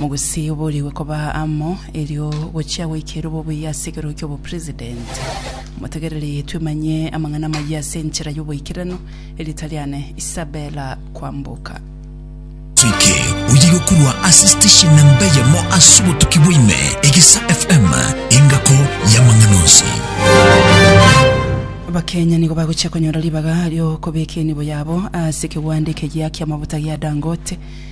Mogusii oboorigwe koba amo, erio gochia goikera obobuya ase ekerogo ki'obopresident. Motegerere twemanye amang'ana amayia ase enchera y'oboikeranu. Erieta riane Isabella Kwamboka. Soike oye yokorwa ase station namba eyemo ase obotuki bwaime Egesa FM engako y'amang'ana onsi. Abakenya nigo bagochia konyora ribaga ri'okobeka enibo yabo ase ekegwande ekegiya ki'amafuta gia Dangote.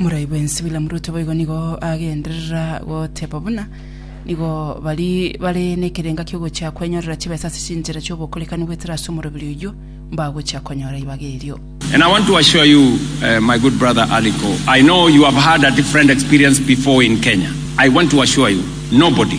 Morai bwensi William Ruto boigo nigo agenderera goteba buna nigo bari bare nekerenga kiogochia kwenyorera chibesa ase chinchera chiobokorekani goetera ase omoroberi oyio mbagochia konyora ibaga erio. And I want to assure you, uh, my good brother Aliko, I know you have had a different experience before in Kenya. I want to assure you, nobody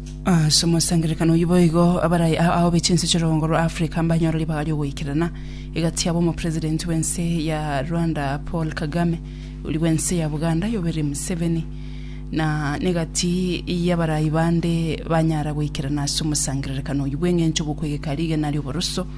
Ase omosangererekano oyio boigo abarai a aobe chinse chi'orogongo rwa Africa mbanyore ribaga ri'ogoikerana egati yabo omopresident bw'ense ya Rwanda Paul Kagame, oria bw'ense ya Buganda Yoweri Museveni na negati y'abarai bande banyara goikerana ase omosangererekano oyio bw'engencho bw'okwegeka rigena ri'oboroso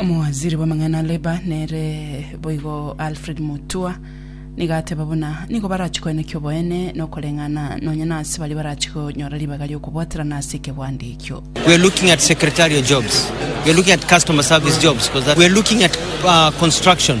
Omowaziri bw'amang'ana a Labour nere boigo Alfred Mutua nigo ateba buna nigo barachie koeneka oboene na okoreng'ana nonya nase baria barachie konyora ribaga ri'okobwaterana ase ekebwanda ekio. We are looking at secretarial jobs. We are looking at customer service jobs because that we are looking at uh, construction.